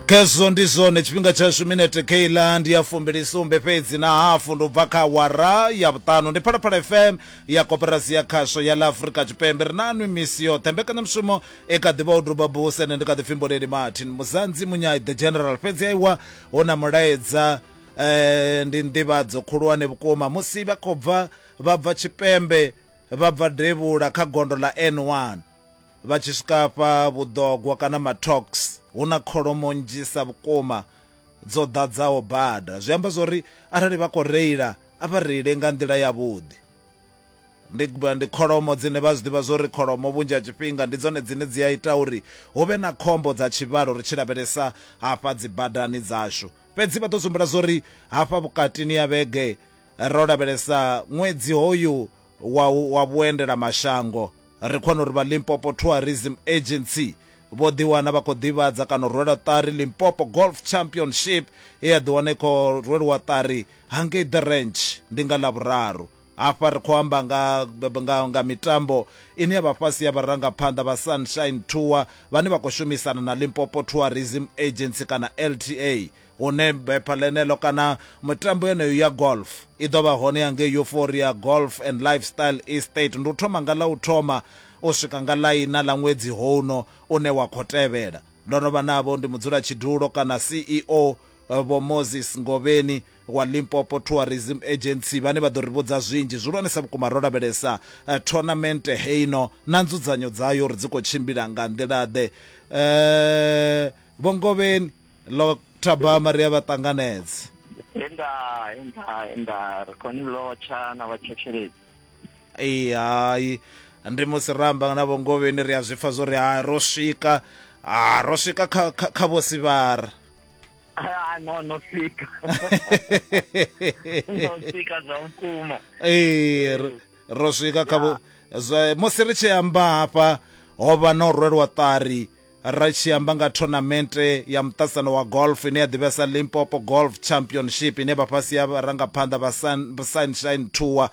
khezwo ndi zwone tshifhinga tshashu minete keiland ya fumbilisumbe fhedzi na hafu ndo bva kha wara ya vhuṱanu ndi phalaphala fm ya koperasi ya khasho ya la afurika tshipembe ri na nwi misi yoṱhe mbekanyamushumo i kha ḓivha u duba buse ende ndi kha ḓi fhimboleli martin muzanzi munyai the general fhedzi aiwa hu na mulaedza eh, ndi nḓivhadzo khulwane vhukuma musi vha khou bva vha bva tshipembe vha bva devhula kha gondo ḽa n1 Vha tshi swika afha vhuḓogwa kana mathok's hu na kholomo nnzhisa vhukuma dzo ḓadzaho bada zwi amba zwori arali vha khou reila a vha reile nga nḓila yavhuḓi ndi ndi kholomo dzine vha zwi ḓivha zwori kholomo vhunzhi ha tshifhinga ndi dzone dzine dzi a ita uri hu vhe na khombo dza tshivhalo ri tshi lavhelesa hafha dzi badani dzashu fhedzi vha ḓo dzumbula zwori hafha vhukatini ya vhege ro lavhelesa ṅwedzi hoyu wa, wa vhuendela mashango. Ri khona uri vha Limpopo Tourism Agency vho ḓiwana vha khou ḓivhadza kana u rwela ṱari Limpopo Golf Championship ye ya ḓiwana i khou rweliwa ṱari hangei The Ranch ndi nga Lavhuraru. Hafha ri khou amba nga, nga, nga mitambo ine ya vha fhasi ya vharangaphanḓa vha Sunshine Tour vhane vha khou shumisana na Limpopo Tourism Agency kana LTA. hune bepha ḽeneḽo kana mitambo yeneyo ya golf i ḓo vha hone ya ngei euphoria golf and lifestyle estate ndi u thoma nga ḽa u thoma u swika nga ḽaina ḽa ṅwedzi houno une wa khou tevhela ndo no vha navho ndi mudzula tshidulo kana ceo eh, vho moses ngovheni wa limpopo tourism agency vhane vha ḓo ri vhudza zwinzhi zwihulwanesa vhukuma ro lavhelesa eh, tournamente heino na nzudzanyo dzayo uri dzi khou tshimbila nga nḓila-ḓe um vho ngovheni Lo thabama ri a vha ṱanganedze. He nda he nda he nda ri khou ni lotsha na vhathetshelesi. Ee hai ndi musi ra amba na vho Ngovheni ri a zwi pfa zwo ri hai ro swika ah, ro swika kha kha, kha vho Sivhara. Ah, no no swika no swika zwa vhukuma Ee ro- ro swika kha vho zwa- musi ri tshi amba hafha ho vha na u rwelwa ṱari Ri tshi amba nga thonamente ya muṱasano wa golf ine ya ḓivhea sa Limpopo Golf Championship ine vha fhasi ya vharangaphanḓa vha Sunshine Tour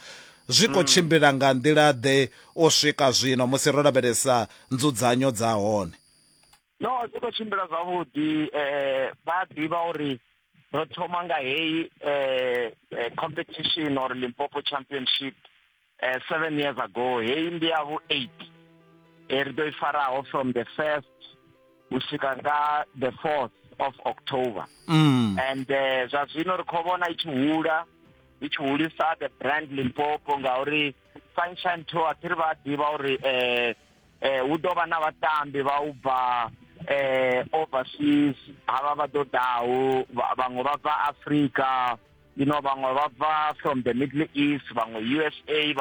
zwi khou tshimbila nga nḓila-ḓe u swika zwino musi ro lavhelesa nzudzanyo dza hone? No, zwi khou tshimbila zwavhuḓi vha a ḓivha uri ro thoma nga heyi competition or Limpopo Championship uh, seven years ago heyi ndi ya vhu eight e ri ḓo i faraho from the first u swika nga the fourth of october mm. and uh, zwa zwino ri khou vhona i tshi hula i tshi hulisa the brand limpopo ngauri sunshine tour thi ri vha ḓivha uri um eh, hu ḓo vha na vhatambi vha u bva eh, overseas havha vha ḓo ḓaho vhaṅwe vha bva africa you know vhaṅwe vha bva from the middle east vhaṅwe usa